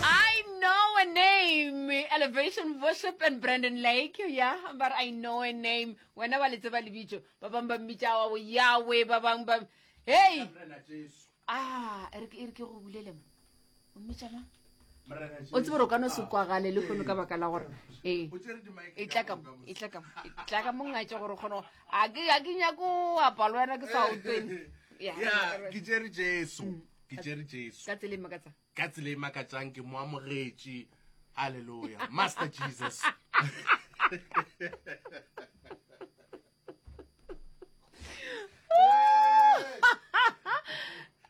I know a name elevation worship and brandon lake ya but i know a name wena ba le tseba lebitso ba bangwe ba mmitša wa yawe ba bangwe ba hey ah e re ke e re ke go bulele mo o mmitša mang o tsebe gore o ka no se kwagale le kgone ka baka la gore ee e tla ka mo e tla ka mo e tla ka mo ngatše gore o kgone go- a ke a ke nyako apa le wena ke sa oteng ya ke tsere jesu ke tšere jesu ka tsela e makatsang ka tsela e makatsang ke mo amogetše halleluja master jesus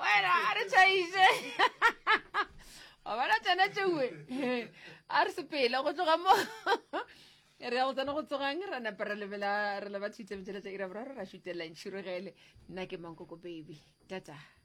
wena a re tšhaiše wa bona tsena tšewe a re sepele go tloga mo re ya go tsena go tsogang ra napa re lebela re leba thitse metšheletsa ira boraro ra šutelela ntšhirogele nna ke mankoko baby tata